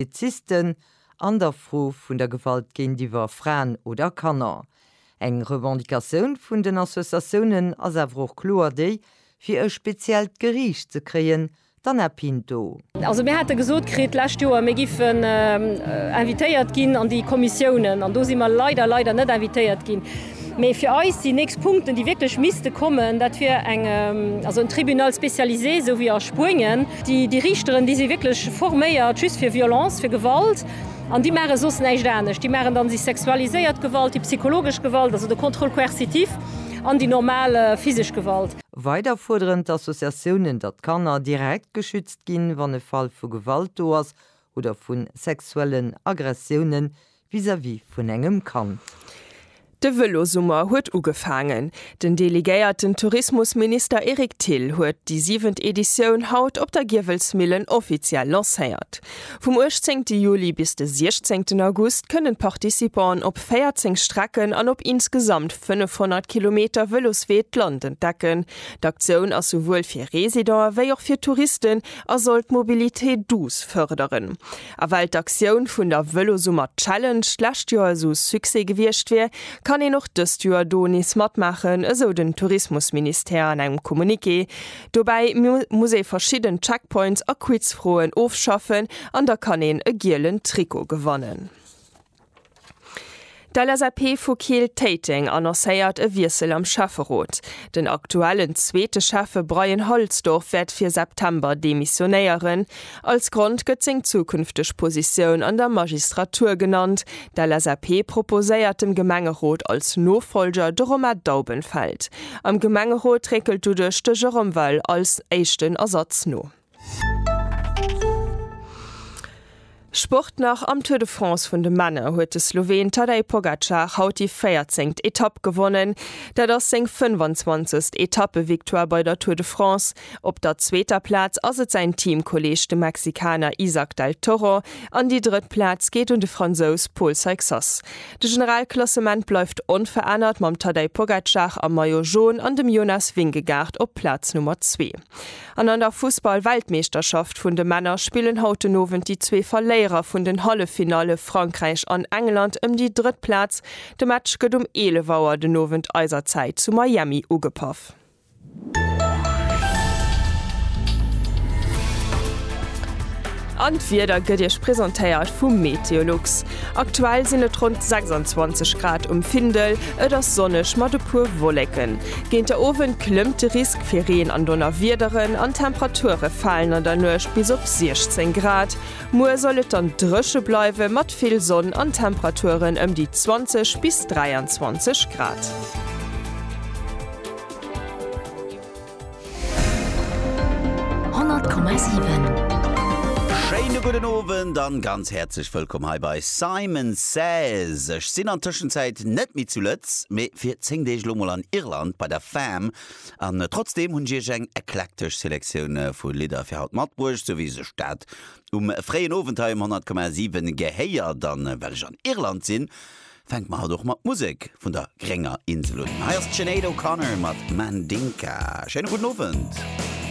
Polizisten an der Fro vun der Gewalt géintiwwer Fraen oder Kanner. Eng Revendicatioun vun den Associatiounen ass awer och kloer déi, fir e speziellt Geriicht ze kréien, d'Anna Pinto. Also mir hate gesot kritt d'lescht Joer, mir géifen invitéiert ginn an déi Kommissiounen, an do si mer leider, leider net invitéiert ginn. Mee fir eis déi nächst Punkten, déi wierklech misste kommen, dat wier eng, also en Tribunal spécialisé, esou wéi a Spuenien. Déi Riichteren, déi si wierklech forméiert just fir Violence, fir Gewalt. An déi maache soss näischt anescht. Déi maachen dann déi sexualiséiert Gewalt, déi psychologesch Gewalt, also de Contrôle coercitif, an déi normal physesch Gewalt. Weider fuerderen d'Associatiounen, datt d'Kanner direkt geschützt ginn, wann e Fall vu Gewalt do ass oder vu sexuellen Aggressiounen, vis-à-vis vun engem Kand. De Vëlosummer huet ugefaangen. Den delegéierten Tourismusminister Eric Thill huet déi siwent Editioun haut op der Giewelsmillen offiziell lancéiert. Vum 18 Juli bis de 16 August kënnen d'Participanten op 14 Strecken an op insgesamt 500 Kilometer Vëloswee d'Land entdecken. D'Aktioun ass souwuel fir Residente wéi och fir Touristen a soll d'Mobilité douce fërderen. A well d'Aktioun vun der Vëlosummer Challenge d'lescht Joer esou Succès gewiescht wier, kann een och dëst Joer do nees matmaachen, esou den Tourismusministère an engem Communiqué. Dobäi muss ee verschidden Checkpoints a Quizfroen ofschaffen an da kann een e gielen Trikot gewannen. D'LSAP vu Keel Téiteng annoncéiert e Wiessel am Schäfferot. Den aktuellen zweete Schäffe Bryan Halsdorf wäert fir September demissionéieren. Als Grond gëtt seng zukünfteg Positioun an der Magistratur genannt. D'LSAP proposéiert dem Gemengerot als Nofollger de Romain Daubenfeld. Am Gemengerot réckelt doduerch de Jérôme Weil als éischten Ersatz no. Sport nach, Am Tour de France vun de Männer huet de Sloween Tadej Pogacar haut déi 14. Etapp gewonnen. Dat ass seng 25. Etappe-Victoire bei der Tour de France. Op der zweeter Plaz ass et säin Teamkolleeg de Mexikaner Isack del Toro an déi drëtt Plaz geet un de Fransous Paul Seixas. De Generalklassement bleift onverännert mam Tadej Pogacar am Maillot Jaune an dem Jonas Vingegaard op Plaz Nummer zwee. An an der Fussball-Weltmeeschterschaft vun de Männer spillen haut den Owend déi zwee Verléierer vun den Halleffinalle Frankräich an England ëm déi drëtt Plaz. De Match gëtt um 11 Auer den Owend eiser Zäit zu Miami ugepaff. An d'Wieder gëtt Iech presentéiert vum Meteolux. Aktuell sinn et ronn 26 Grad um Findel, et ass sonneg mat e puer Wolleken. Géint der Owend klëmmt de Risk fir Reen an Donnerwiederen an d'Temperature falen an der Nuecht bis op 16 Grad. Muer soll et dann dréche bleiwe mat vill Sonn an Temperaturen ëm déi 20 bis 23 Grad. 100,7. Schéine gudden Owend an ganz häerzlech wëllkomm hei bei Simon Says. Ech sinn an Tëschenzäit net méi zu Lëtz, mee fir 10 Deeg lo mol an Irland bei der Fam. An trotzdeem hunn ech iech eng eklektesch Selektioun vu Lidder fir haut matbruecht, sou wéi sech dat um fréien Owend hei um 100,7 gehéiert. An well ech an Irland sinn, Fänke mer halt och mat Musek vun der grénger Insel un. Hei ass d'Sinéad O'Connor mat Mandinka. Schéine gudden Owend.